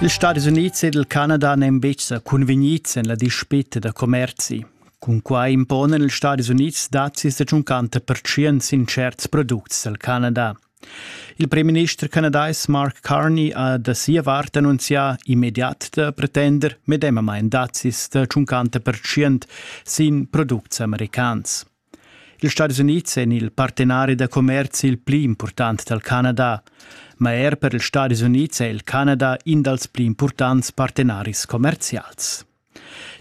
Ils Stadis Unids ed il Canada n'èn betg sa cunvegnids en la dispita da commerzi. Cunquai imponan ils Stadis Unids dazis da 50 pertschient sin tscherts products dal Canada. Il premierminister canadais Mark Carney ha da sia vart annunzià immediat da pretender medemamain dazis da 50 pertschient sin products americans. Ils Stadis Unids èn il partenari da commerzi il pli impurtant dal Canada, ma er per ils Stadis Unids è il Canada in dals pli impurtants partenaris commerzials.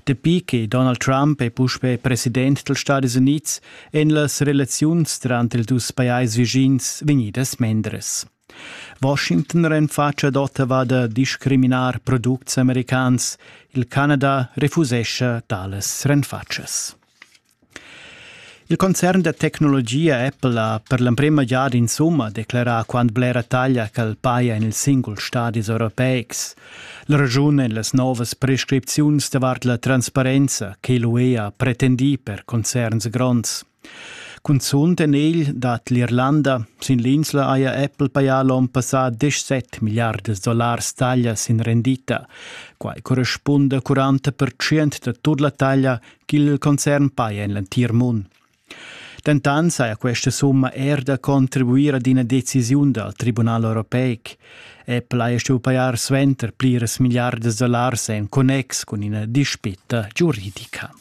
Dapi che Donald Trump è puspè president dals Stadis Unids èn las relaziuns tranter ils dus pajais vischins vegnidas mendres. Washington renfatscha ad Ottawa da discriminar products americans. Il Canada refusescha talas renfatschas. Il concern da tecnologia Apple ha per l'emprema giada insumma declerà quant blera taglia ch'el paja en ils singuls stadis europeics. La raschun èn las novas prescripziuns davart la transparenza che l'UE ha pretendì per concerns gronds. Cunzunt en egl dat l'Irlanda. Sin l'insla haja Apple pajà l'onn passà 17 milliardas dollars taglia sin rendita. Quai correspunda a 40% da tut la taglia ch'il concern paja en l'entir mund. Dentant saja questa summa er da contribuir ad ina decisiun dal Tribunal europeic. Apple haja stuì pajar suenter pliras milliardas dollars en connex cun ina dispitta giuridica.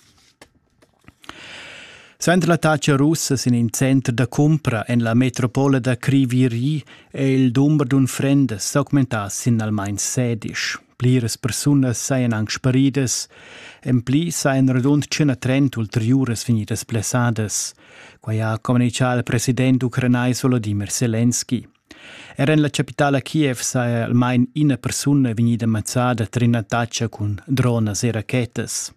Suenter l'attacca russa sin in center da cumpra en la metropola da Criviri è il dumber d'unfrendas s'augmentà sin almain sedisch. Pliras persunas sajan anc sparidas, en pli sajan radund tschena trent ulteriuras vegnidas blessadas. Quai ha communitgà il president ucranais Volodymyr Selenski. Er en la chapitala Kiev saja almain ina persuna vegnida mazzada tar ina taccia cun dronas e rachetas.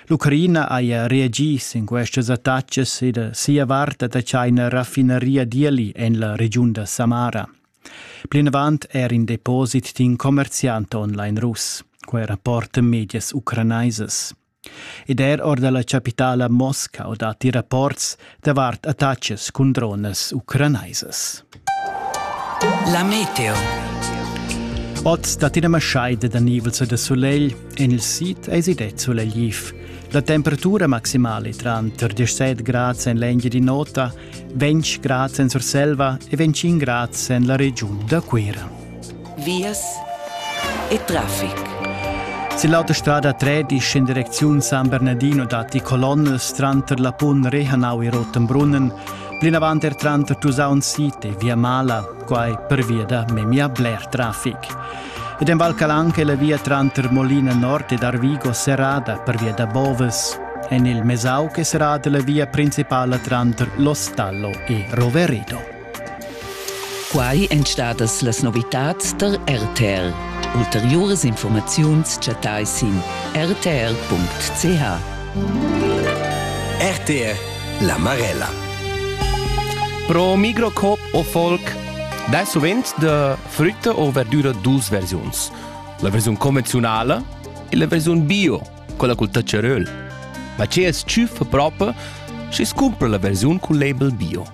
L'Ucraina haja reagì sin questas attacas e da sia vart ha tschai ina raffinaria d'eli en la regiun da Samara. Plinavant er in deposit d'in commerziant online russ, quai rapporta medias ucranaisas. Ed er or da la chapitala Moscau datti rapports davart attacks cun dronas ucranaisas. La meteo. Oz dat ina maschaida da nivels e da sulegl. En il sid eisi det sulegliv. La temperatura maximale tranter 17 grads en l'engia di nota Ventg grads en Surselva e ventgin grads en la regiun da Cuira. Vias e traffic. Se l'autostrada 13 in direcziun San Bernardino datti colonnes tranter la Pun Rehanau e Rotenbrunnen, plinavant er tranter Tusaun City e Via Mala, quai per via da memia bler traffic. ed en Val Calanca è la via tranter Molina Nord ed Arvigo serrada per via da Boves. En il Mesauc è serrata la via principala tranter Lostallo e Roveredo. Quai èn stadas las novitads tar RTL. Ulteriuras informaziuns chattai sin rtr.ch. RTL La Marella. Pro Migrocop o Folk, da sovent de frütta o verdüra dus versiuns. La versiun convenziunala e la versiun bio, con la col taceröl. Ma ce es tschüffa propa schi scumpra la versiun col label bio.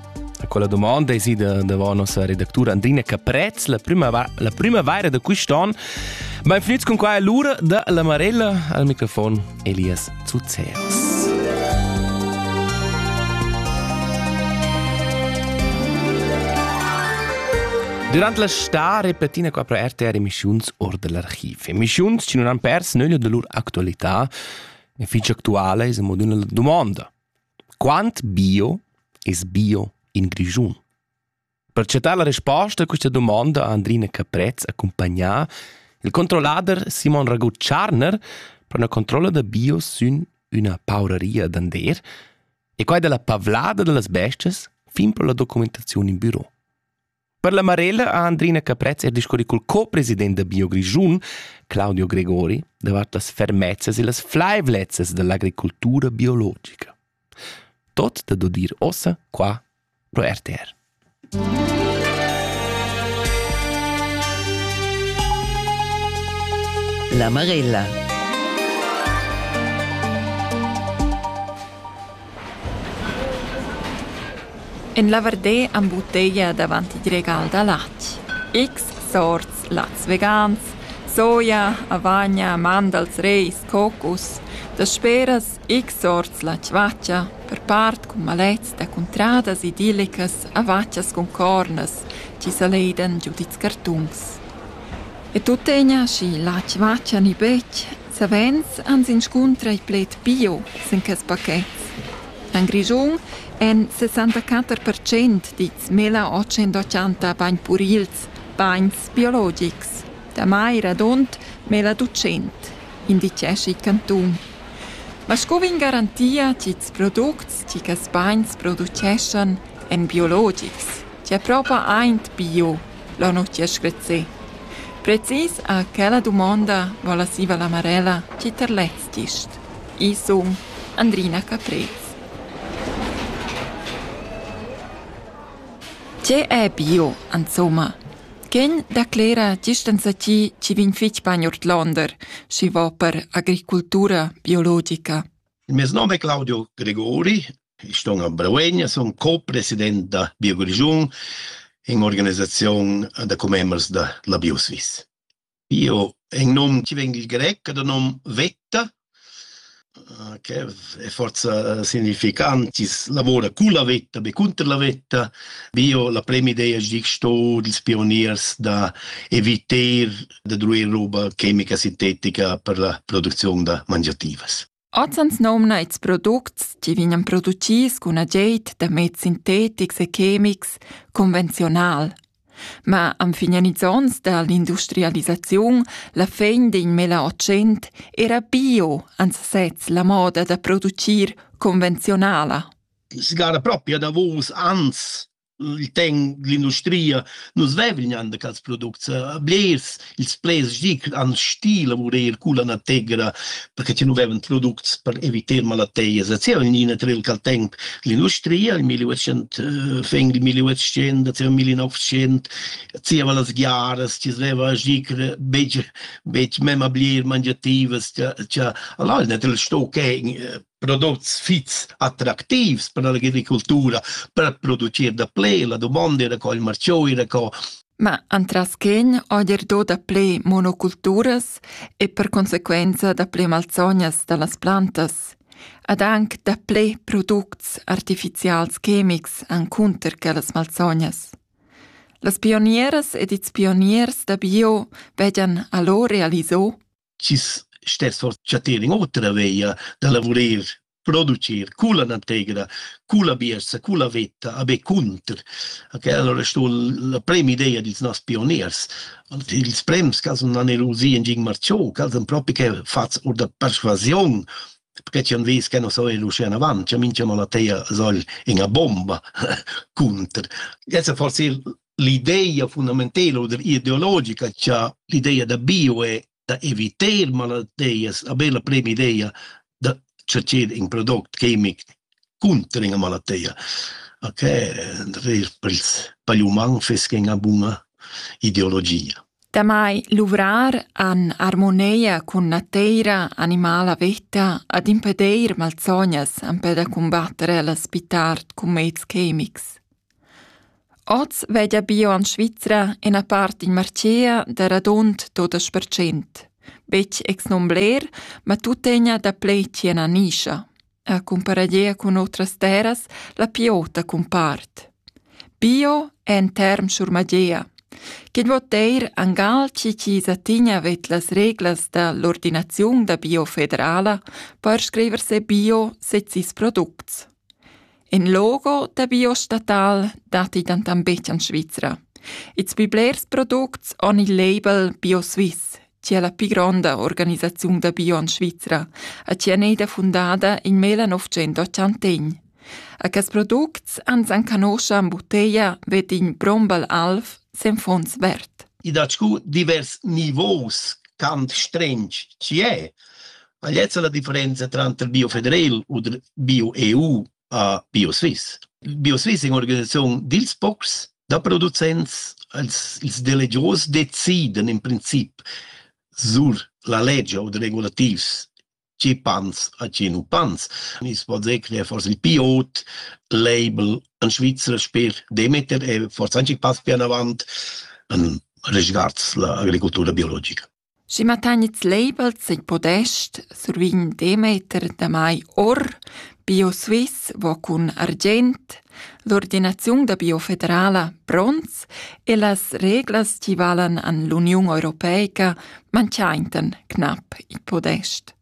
A quella domanda esi da davant nossa redactura Andrina Caprez la primavera, la primavera da quest'anno. Ben finids con qua l'ura da la Marella al microfon. Elias Zuzeras. Durant la sta repetina qua pro RTR emissiuns or dell'archiv. Emissiuns che non han pers nöglio de lur actualità e fich actuale es mod üna domanda. Quant bio es bio in Grischun? Per chatar la resposta a questa domanda ha Andrina Caprez accumpagnà il controllader Simon Ragut-Tscharner per una controlla da bio sün üna pauraria d'ander e quai della pavlada dellas bestias fin per la documentazione in büro. Per la Marella ha Andrina Caprez er discurri col co-president da Bio Grischun, Claudio Gregori, davart las fermezzas e las flaivlezzas dell'agricoltura biologica. Tot dad udir ussa qua pro RTR. La Marella. En la Vardé am butteia davant il regal da latg. X sorts lats vegans, soia, avagna, mandals, reis, cocus, da speras X orts la chvatscha, per part cun malets da cuntradas idillicas a vatschas cun cornas chi saleidan giu dils cartuns. E tuttegna schi la chvatscha ni betg, savens ans inscuntra i pled pio sin quels pachets. En Grischun èn 64 percent dits 1880 bagn purils, bagns biologics. Damai radund 1200, indicescha il cantun. Ma sco vegn garantia ch'ils products chi quels bains produceschan èn biologics, chia propa aint bio, l'ho nu chia screzzé. Precis a quella dumonda vola siva la Marella chi ter lez gist. Ii sun Andrina Caprez. Tge è bio, insomma? Quel declera gist enzatgi chi vegn fich bain ordlonder, schi va per agricultura biologica. Il mes nom è Claudio Gregori, ich sto a Breuegna, sono co-president da BioGrigiun in organizzazione da commembers da la BioSwiss. Io en nom ti vegn il grec ed in nom vetta che è forsa significant, ins lavora culla vetta, be cunter la vetta. Bio la premi'ideia es disch sto dils pioniers da eviter da druir roba chemica sintetica per la producziun da mangiativas. Ozans nomna ils products chi vegnan producis cun agid da meds sintetics e chemics convenziunal. Ma am fignan ils ons da l'industrialisaziun la fin d'in milleottocent era bio ans sez la moda da producir convenziunala. Sigara propria davous ans il ten l'industria nus vevignan de cals products blers ils plaids dic an stil lavurer cu la nategra perché ti nu veven products per evitar malateias et sia nina tre il cal temp l'industria il 1800 fin il 1800 sia 1900 sia va las giaras ti sveva dicbecbec mem a blier mangiativas tia allora net il sto che prodots fits attractivs per l'agricultura, per producir da ple, la domanda era co il marchio era co Ma antras quegn oier do da ple monoculturas e per consequenza da ple malsognas da las plantas, ad anc da ple products artificials chemics encunter quellas malsognas. Las pionieras ed ils pioniers da bio vegian allo realiso chi's stess or chattir in otra veia da lavurer, producir culla nategra, culla biessa, culla vetta, a be cunter. Okay, allora sto la prema idea dils nos pioniers. Ils prems ca sun anerusi in Gin Marciò, ca sun propi che fats or da persuasiun, perché ci han vis che non so ir uscire in avanti, minchia la teia soll in a bomba cunter. Jetzt forse l'ideia fundamentela oder ideologica cha l'ideia da bio è da eviter malattias a bella prima ideia da ceder in product chimic conter ina malattia ok per ils per gli uman feskin a buna ideologia Damai luvrar an armoneia cun nateira animala vetta ad impedeir malsognas empè da cumbattere a l'spitart cun meds chemics. Oz veglia bio en Svizra ina part in martgea da radund dudesch percent. Betg ex non bler, ma tuttegna daplè tien a nischa. A cumparadia cun otras terras, la piota cumpart. Bio è en term schurmagea. Ch'in vot eir angal chi chi satigna vet las reglas da l'ordinaziun da bio federala per scriver se bio sezis products. In logo da biostatal datti dentant betg en Svizra. Ils pli blers products han il label BioSwiss, che è la pli gronda organisaziun da bio en Svizra e che è eda fundada in 1981. A quest products ans enconoscha en butteglia Vettin Brombal Alf sen Fons Vert. I dat scu divers nivos, tant strench chi è. Ma lezza la differenza tranter Bio Federal u Bio EU a Bio Swiss. Bio Swiss è un'organizzazione dils pocs da producents, els, ils delegios deciden in princip sur la legge o regulativs ci pans a ci nu pans. Is pots ecler fors il piot, label an Svizra sper Demeter e fors anche pass pian avant an resguards la agricoltura biologica. Schi ma tagnits labels in podest, survign Demeter damai or BioSwiss vo cun argient, l'ordinaziun da biofederala pronts e las reglas chi valan an l'Uniun europeica manchaintan cnap il podest.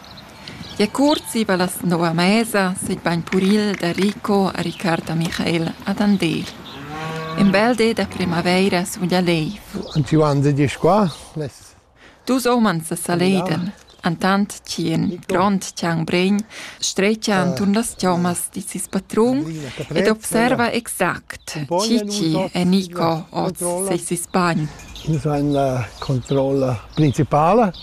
Gia cuort zieva las nov a mesa s'ei bain puril da Rico a Ricard da Michael ad Andel. In bel di da primavaira sun gia leiv. Und wie waren Sie dich qua? Les Dus umans sa saleiden, entant chi in grond chiang bregn strecha anturn las chommas di sis patrun ed observa exact chi chi è Nico oz sei sis bagn. Das war eine Kontrolle principale.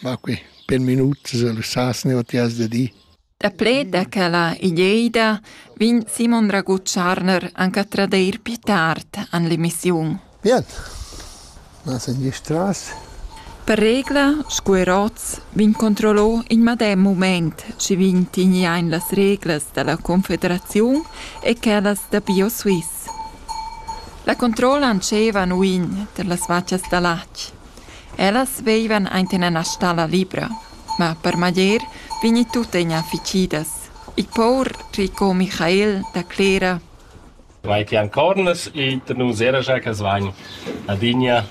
Ma qui, per minuts, sas neua ti has da dir. Daplè da quella ideida vegn Simon Ragucharner anche a tradeir più tard an l'emissiun. Bien. Ma sen gistras. Per regla, scu er oz, vegn controllò in madem moment, ci vegn tigniain las reglas da la Confederaziun e quellas da BioSwiss. La controlla ancevan uin tar las vaccias da latg. Ellas veivan ainten ena stalla libra, ma per maglier vegni tuttegna ficidas. Il pour Rico Michael da Clera Vai ti ancornas iter nus era gia che svain adina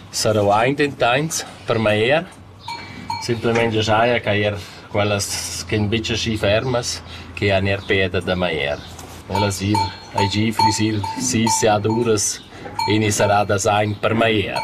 saruaint intains per mai er. Simplement giaja che er quellas ch'en bitsch aschi fermas che han er peda da mai er. Ellas ir a gi frisir sis ad uras e ni saradas aint per mai er.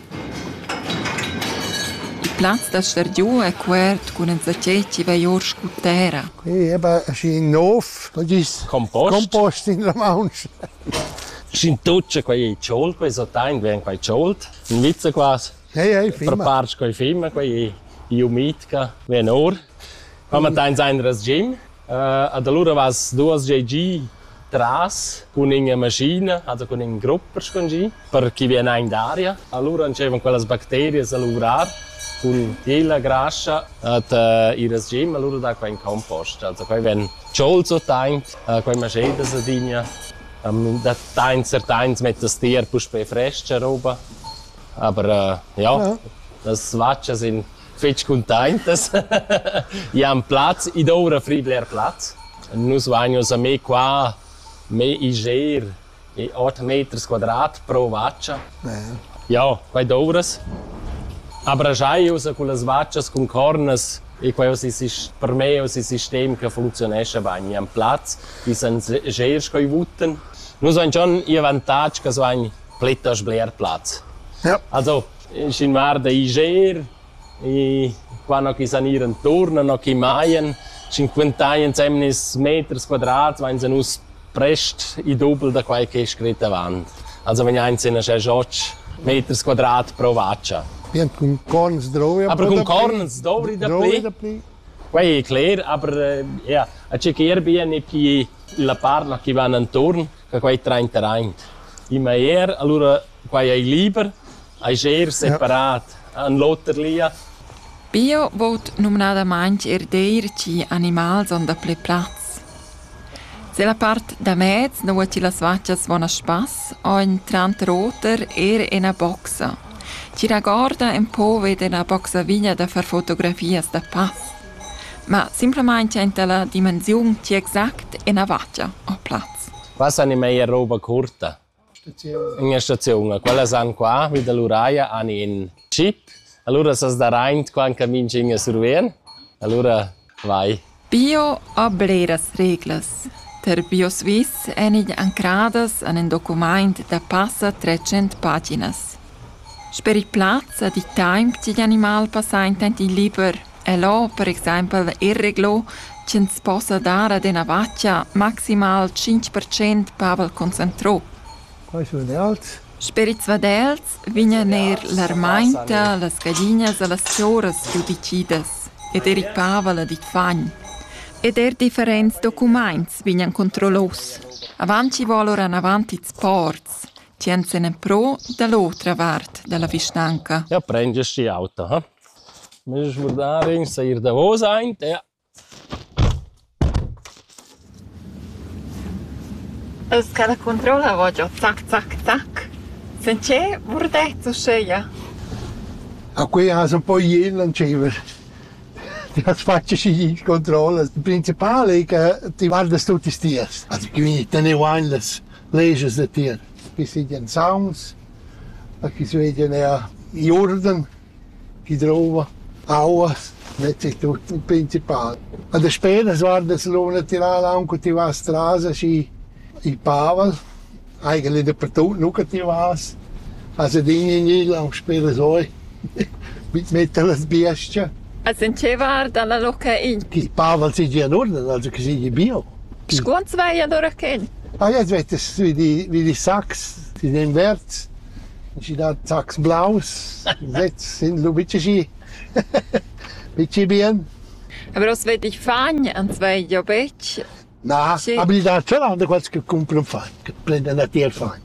Il plaz da star giu è cuort cun enzatgei chi vai ord scu tera. Ei eba aschi nov, co gis? Compost. Compost in la maunch. Sc'in tuccia quei ei tschult, quei so tein vegn quei tschult, in vizza quas. Ei ei fimma. Preparst quei fimma, quei ei umidca, vegn or. Ma mattein sa in resgim. Ed alura vas duos gia giü tras cun üna maschina, also cun ün grupp per spongir, per chi vien aint d'aria. Alura entscheivan quellas bacterias a luvrar cun tier la grascha ed il resgim alura dà quai ün compost. Also quai vegn tscholts otaint, quai maschedas adina. Da tains certains mettas tier puspè frescha roba, aber ja, las vatschas in fetg cuntaintas. Jan Platz, id oura fri bler plaz. Nus vagnos a me qua, me iger e 8 meters quadrat pro vaccia. Ja, quai douras. Abrajaius con las vaccias cun cornas e quai es il per me es il sistem che funzionescha bain. Jan Platz, die sind sehr scheuwuten. Nus vain schon i avantatg che so ein pletas bler plaz. Ja. Also Schin var da ijer e qua no chi san ir inturn no chi majan cinquantains emnis meters quadrats vainsa nus prest i dubel da quai ch'es scrit avant. Also vegnains in aschè joch meters quadrat pro vacha. Bien cun corns dovri aber cun corns dovri dapli. Quai è cler, aber ja, a chequer bien e chi la parla chi van inturn, che quai train terrain. I ma er, allura Quai ei liber, ei scher separat, en l'oter lia. Bio vot numnadamain er deir chi animals on da ple plaz. Se la part da mez nua chi las vaccias von a spass, on tranter oter er ena boxa. Chi ragorda en po vede la boxaviglia da far fotografias da pass. Ma simplamain enta la dimensiun chi exact ena vaccia ho plaz. Pass animei è roba curta. Ünna staziun. Quella san qua vi da l'Uraia han in chip, alura s'as daraint qua ün camin ch'ün a survien, alura vai. Pio ha bleras reglas. Per Bio Swiss èn igl ancradas en in documaint da passa trecent paginas. Sper il plaz ha dit temp ch'igl animal passa intant il liber El ho per exaimpel irreglo ch'ins possa dar ad üna vacha maximal tschinch per cent pavel concentrò. Quai sun els. Sperizuadels vegnan eir l'armainta, las gaglinas e las choras chiù decidas, ed eir il pavel ed il fagn. Ed eir differents documaints vegnan controllos. Avant chi voul oura anavant ils ports, tschient se ne pro da l'otra vart da la vischnanca. Ja prend schi auta, ha? Meis schmurdarin seir davos aint e Els cada cuntroula vo giò zac zac zac sinceré murdets uscheia. A que as ün po ien lanciver. Ti as fatsch schi gnir controllas. Il principal ei che ti guardas tutti stias. As quindi teneu aint las leges da tir, chi sigien sauns, a chi sveglien eir i urden. chi drouva aua net è tut il principal. A despera s'guarda se l'una tirar l'aua che ti vas tras aschi il pavel, eigentlich dappertut nu che ti vas, also din in il aunc sper as oi mit metter las biestge. As in che guarda la Luca in? Chi Pavel sigi ad urden, also che sigi bio. Scuont svai allora chen? Ah ja, svete vi di vi di Sax, di den Verz. Schi da sachs blaus sez sun lu bitg aschi bitg bien. Aber was wett ich fagn? Ans vai jo betg? Na, aber il natural da quels che cumpran fan, che prendan a tier fan.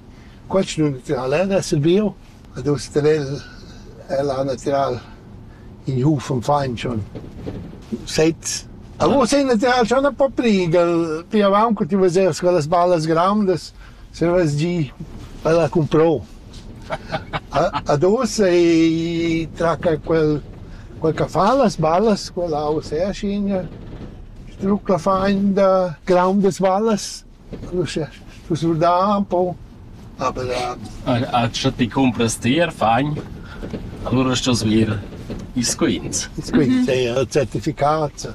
Quels nu natural è da sil bio. Ad us te vel è la natural in huf am fain schon. Sez. A vos è natural schon un po' pli, gal pia avanc ti veseres quelles ballas grandas. Se vas gi, ella cumprou. Ad ussa i traca quel, quel ch'a fa las ballas, quella ussa è aschigna, strucla fain da graundas ballas, uschè stu surdà ün po, aber a scha ti cumpras tier fain, alura stos vir ils quints. Ils quints, è il certificat.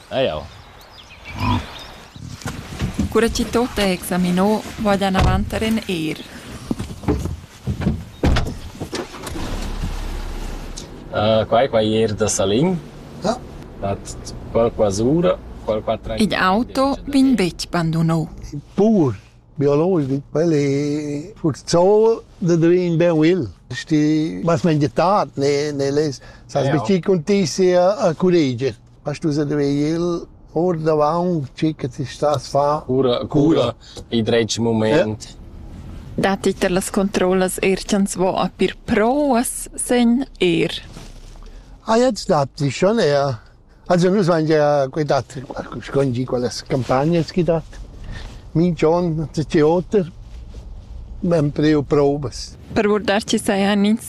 Eau. Cura chi tot è examinò, vada avanter in eir. Quai qua ier da Salin. Dat qualche ura, qualche tren. Il auto vegn betg bandunò. Pur biologic, quel è furzol da dovere in ben will. Sti mas mengetat ne ne les sas bici contessi a cureger. As stu svegnir ordavaunt schi che ti stas a far cura cura il dretg mumaint. Datti tar las controllas eir cha'ns vo a pir prouas sen eir? A jets datti schon eir. Also nus vain gia que dat schon gì quellas campagnas chi dat. Minch'on ün oter, ben preu prouvas. Per guardar chi sajan ins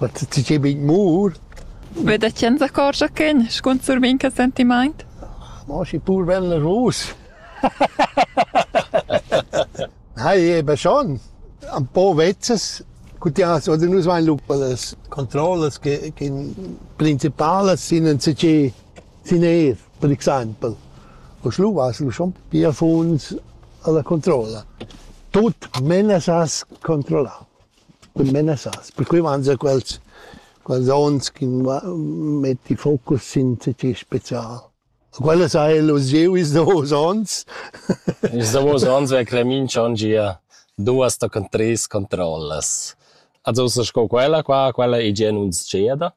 tgei bein mur. Be da chen s'accorgia ch'ein scunzur minca sentimaint? Mo schi pur ven rus. Nei, eben schon. Ein paar Wetzes. Cutias, oder nus vain lupa las controllas che, che principalas sind ein CC sind er, per exempel. O schluvas lu schon pia funs alla controlla. Tut menas as controllar. cun menassas, perquei mangia quels quels onns ch'in metti focus sin tgei special. Quellas ha el usiu ils davos onns. Ils davos onns è Cremin schon gia duas tochen treis controllas. Also ussa sco quella qua, quella ei gia nun tscheda.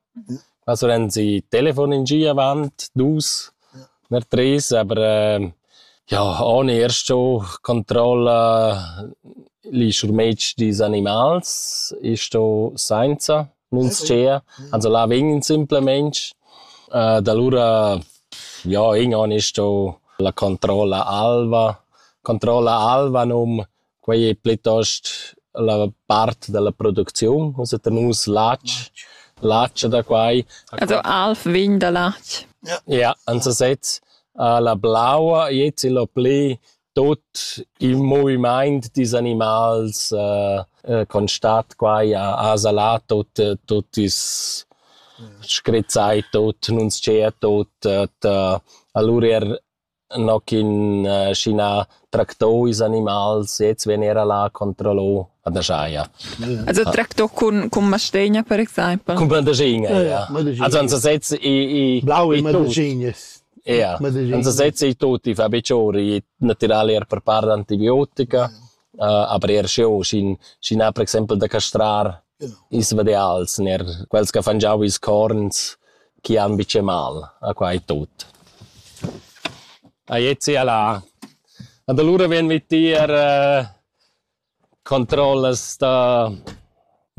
Ma sulenz i telefon in gia avant dus ner tres, aber ja on eir sto controlla li schurmetg dils animals e sto sainza nun tschea, also là vegn simplamaing. Da lura ja in on sto la controlla alva. Controlla alva nom Quei ei plitost la part dalla producziun, ussa tener nus latg, latg e da quai. Also alv vegn da latg. Ja, ansa sez. La blaua jez il ho pli tut il movimaint dils animals constat quai a salar tut tut is scrizzai tut, nun tschea tut, alura er No ch'ün schi n'ha tractò ils animals sez vegn eir là a controllar a dajaja. Also tractò cun cun mastegna per exaimpel. Cun mandagina, ja. Also ans sezs i i blaue mandagines. Ja, ans sezs i tutti fa biciori natüral eir per part antibiotica, aber eir sch'eu schi schi n'ha per exaimpel da castrar Ils vadials sun eir quels ch'han fangiau ils corns chi han bicce mal a quai tut. A Jezi al ha. Ad alura vegn vi tier controllas da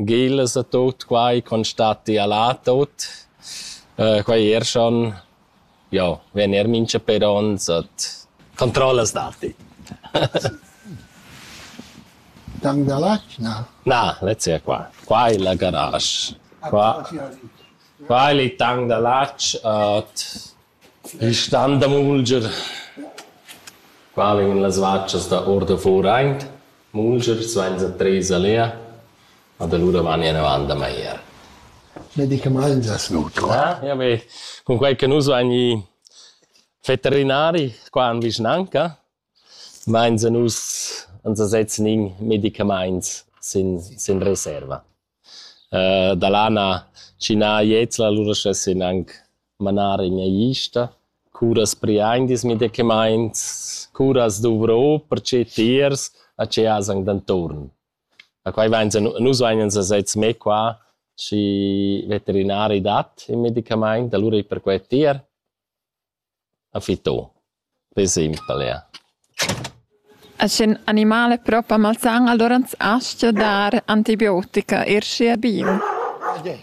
gillas a tut quai, constatti al ha tut. Quai er schon Jau vegn eir minchapè ons ad controllas datti. Tang da l'atgna? Na, lezza è qua. Qua è la garage. Qua, qua è il tang da latg ad il stand da mulger. Qua vegnan las vacas da ordafur aint. Mulger, svenza Teresa Lea. Ma da lura vagni enavant da Maier. Medicamaints as nutra? Ja beh, cunquai che nus vagni veterinari qua in vischnanca, mains a nus ans sezs nin medicamaints sin sin reserva. da là na schi na jezla, lura schessin anc manar ina ista, curas priain dis medicamaints, curas dovro perche tiers a che as anc d'anturn. Ma quai vainsa nus vainsa sezs mê qua schi veterinari dat ün medicamaint, alura i per quai d'ir. A fitto. Pü simpel, ja. E sch'ün animal è propa malsan, alura ans astga dar antibiotica, eir schi è bin.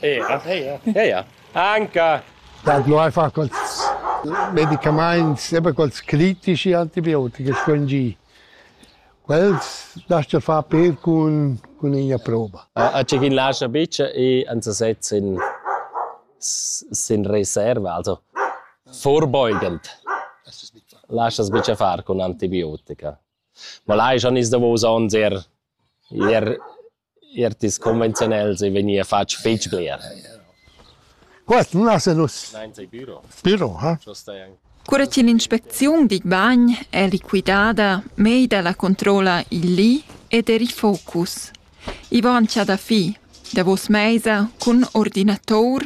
Ja, ja, ja. Anca! Da no ai fa quels medicamaints, sempre quels critici antibiotiche, scuongì. Quels lascha far pel cun cun ina prova. A tge ch'in lascha bitga e ans sezs sin sin reserva, also vorbeugend. Laschas bitga far cun antibiotica. Ma lai schon is davos onns er ir Eir tis convenziunels ei vegnì fatg fetg bler. Quest nun esa nus. Spüro, ha? Cura chi l'inspecziun digl bagn è liquidada, meida la controlla il li ed er il focus. I vain cha da fi davos meisa cun ordinator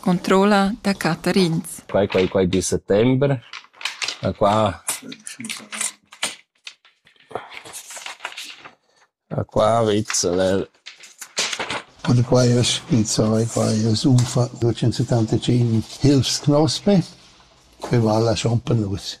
Controlla da cattarins. Quai quai quai di settember. A qua a qua vizzal el. Und quai es il sai, quai es unfa 275 hilfsknospe, que vala schon per nus.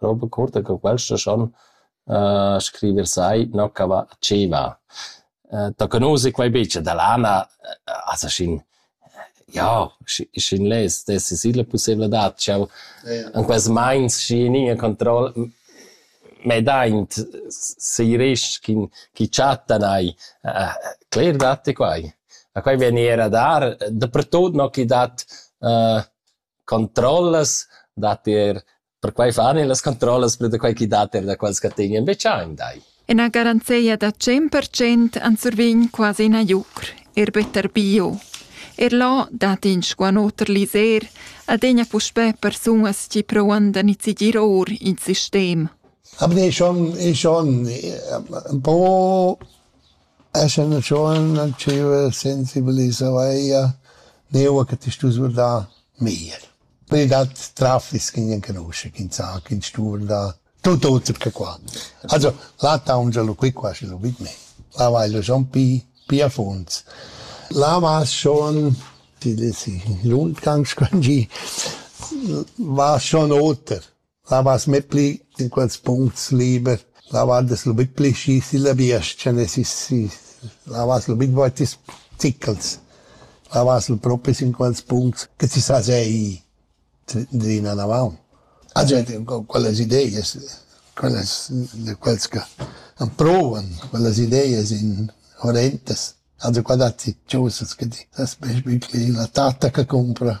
Roba curta che quels laschan scriver sai no ch'a va tschei va. Da che nus e quei bitsch e da lana as schin ja schin less d'esser silla pussevladad ch'jau in quels meins schi in in control mei daint seiresc ch'in chi chattan ai. Cler datti quai. A quai vegni era a dar, dapertut no chi dat controllas dat er perquai fan e las controllas per da quai chi dat er da quels che tegnan be chain dai. Ina garanzia da 100% an survign quasi ina jucr, er better bio. Er là dat in squanoter liser adegna puspè persunas chi provan da nizigir or in sistem. Aber ist schon, ist schon ein paar Escha üna tschuona dscheva sensibilisereia neua che ti stus vurdar meglier. Poi dat traffic chi gnan canuscha, chi ün sa, chi ün stu vurdar tut oter che qua. Also, là taungia lu qui quasi lu vid me. Là vaila schon pi, pi a funds. Là vas schon, ti lesi, lund ganz quangì, vas schon oter. Lavas mê pli in quels puncts liber, lavand es lubit pli schi silla biestga ne si si lavas lubit vouti stichels, lavas lu propris in quels puncts che ti sa sei drina navaun. A gente quellas ideias, quellas de quels che han prouvan quellas ideias in horrentas. Also qua datti chosas che ti sast be pli la tatta che cumpra.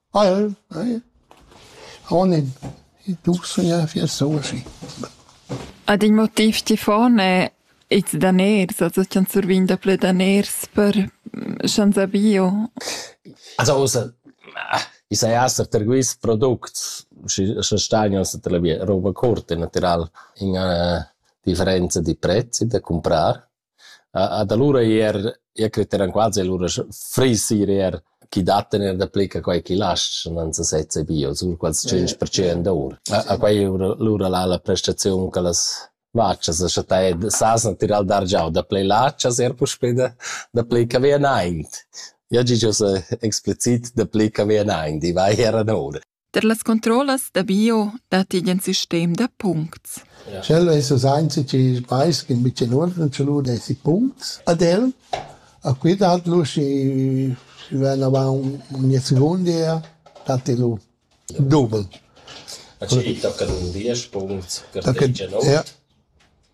Alv, eh? Oh ne, i duch sugna fier soaschi. Ad in motiv chi fon è ils daners, also ch'ans survign daplü daners per sch'ans ha bio. Also ussa, i saja esser per quists products, sche stagn ussa per la via, roba curta natural, in üna differenza di prezzi da cumprar. Ad alura eir, eu creteran quasi alura fris eir eir chi dattan eir dapli che quai chi laschan, non sa sezza bio, sun quals tschinch percent our. A quai eira lura là la prestaziun che las vachas a chattà e s'hasan tirà dar giò daplè lachas eir puspè da dapli che vi anaint. Eu ha gieu sa explicit dapli che vi anaint, i va eir anoura. Per las controllas da bio datti in sistem da puncts. Sch'el es us ainzi chi vais in bicin uorden che lu desi puncts ad el. A qui dat lu si si ven avant ogni seconda datti lu double. A chi tocca un 10 punct, per 10 no? Ja.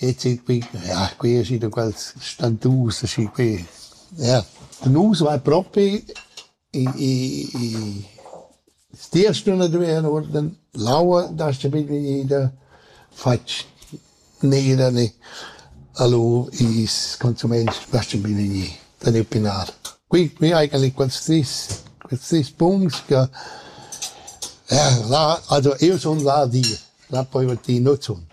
E züg pü ja quia schi da quels stantus aschi qui. Ja, nus vai propi i i i sia stüna doveva uorden l'aua das-cha ida fatg nera ne. Alura i's consumains das-cha bine gnü da gnü pinar. Qui qui eigentlich quels tris quels tris punts che ja là, also io sun là di, là pöi va ti nu zunt.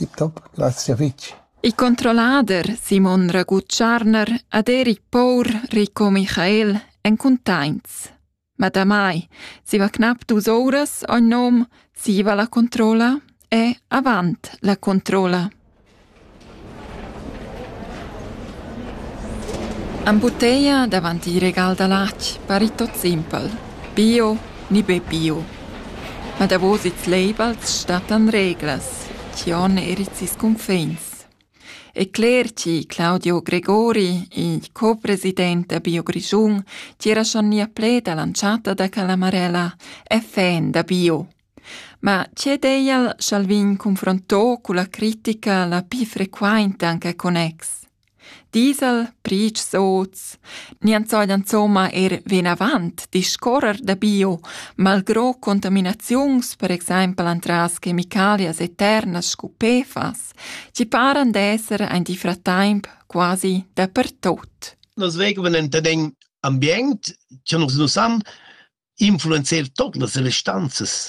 Tip top, grazia fitg. Il controllader Simon Ragutscharner ad Erich Pour Rico Michael èn cuntaints. Ma damai zieva cnap dus ouras ogn nom siva la controlla e avant la controlla. Ün buteia davant il regal da latg pari tot simpel: bio ni be bio. Ma davos ils labels stattan reglas chi hon eir its ils cunfins. E cler chi Claudio Gregori, il co-president da Bio Grischun, tira schon nia pled a l'entschatta da quella marella, e fan da bio. Ma tg'è d'eia cha'l vegn confronto culla critica la pii frequainta anc a connex? Diesel, priitsch soz, niant sajan insomma eir venavant discorrer da bio, malgrò contaminaziuns per exaimpel antras chemicalias eternas scu PFAS, chi paran d'esser aint il frattaimp quasi dapertot. Nos vegl ven enta d'ün ambient, cha nus nu san, influenzer tot las restanzas